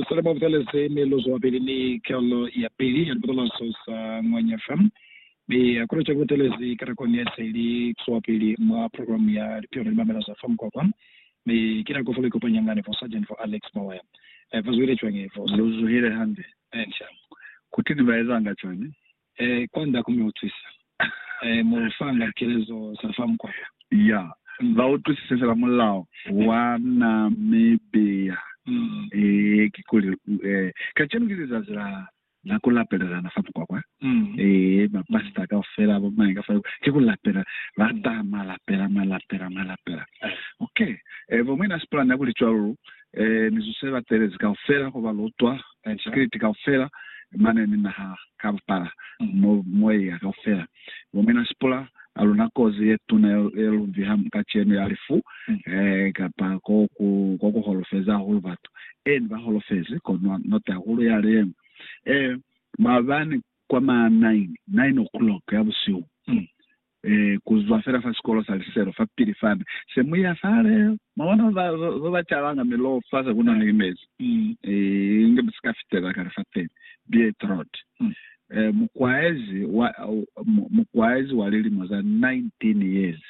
Selimo ku talezi miluzo wapili ni kalo ya pili ya lipatalaso sa Ngwanya fa mi ya ku locwa ku talezi ka nakoni ya se ili swapili mwa programu ya Lipio ni Limamela za fa Mukwakwa, mi ki nako fa ku ikopanya nga ni bo Sargent fo Alex Mawaya. Fa zwile cwañi vosi? Lu zuhile hande. Inca. Kuteni ba ezanga cwañi? He, kwanda ku mi utwisa. He, mu lu fanga kelezo za fa mukwa wo. Ya, ba utwisise fela mulao wa Na mi beya. Ee, kikuli, ee, kacenu ki lizazi la, la ku lapelelana fa mukwa kwa. Ee, mapasita kaufela, bo mañi ka fa yo, ki ku lapela. Ba ta, mwa lapela, mwa lapela, mwa lapela. Okay. Ee, bo mwina Spillane ya ku li cwalo, lu, ee, mizuzu ye batelezi kaufela, koba lu utwa, Sikiliti kaufela, mane ni naha ka bupala, mo moya kaufela o mina sipula, a luna kozi ye tuna ye lu viha kacenu ya lifu, kapa ko ku, ko ku holofezi hahulu batu. Eeni, ba holofezi, kono not hahulu yale yeñwi. Ee, maabani kwa ma nine, nine o'clock ya busihu, Mi ku zwa fela fa sikolo sa liselo fapili fani, se mu ya fale, mwa bona ba ba calanga miloho fa se ku na ni mezi, inge mu si ka fitela kale fapili. Beatroot, mukwaezi wa, mukwaezi wa lilimo za 19 years,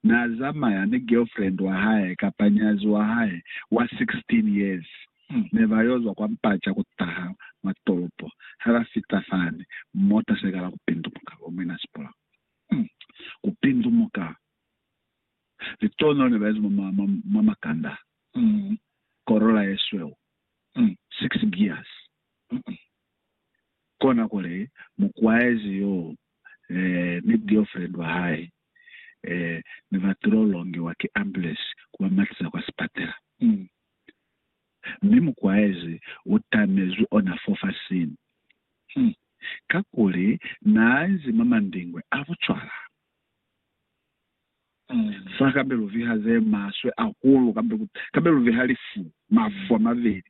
n'a zamaya ni girlfriend wa hae kapa nyazi wa hae wa 16 years. ne ba yo zwa kwa mpaca ku taha mwa tolopo. Ha ba fita fani, mota se kala ku pindumuka lwa mwina sipula. Ku pindumuka! Litono ne ba ezi mwa, mwa, mwa makanda. Corolla ye sweu, six gears. Kona kuli, mukwaezi yoo, eh, ni girlfriend wa hae, eh, ne ba tilo longiwa ki ambulance ku ba matiza kwa sipatela. mi mukwaezi u tamezwi ona fofasini, hi kakuli naa nzi mwa mandingwe a bucwala. Fa kabe lu viha ze maswe ahulu, kabe, kabe lu viha lifu, mafu a mabeli.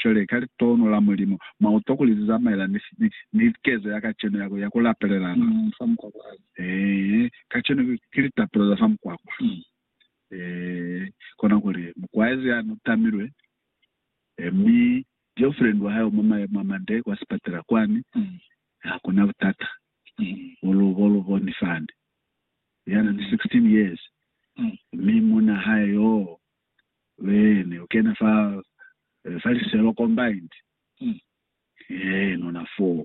Cwale, ka litono la Mulimu, mwa utwa kuli ze zamaelana ni, ni, ni kezo ya kacenu ya ku, ya ku lapelelana. Ee, kacenu ki, ki litapelo za fa mukwakwa. eh, kona kuli mukwaezi ya nu tamilwe eh, mi girlfriend wa hae mwa mayemo a mande kwa sipatela kwani, mm. hakuna butata mm. ulu bo lu boni fani yana ni 16 years mm. mi muna hae yo wene ukena fa eh, fa liselo combined mm. eh, nona 4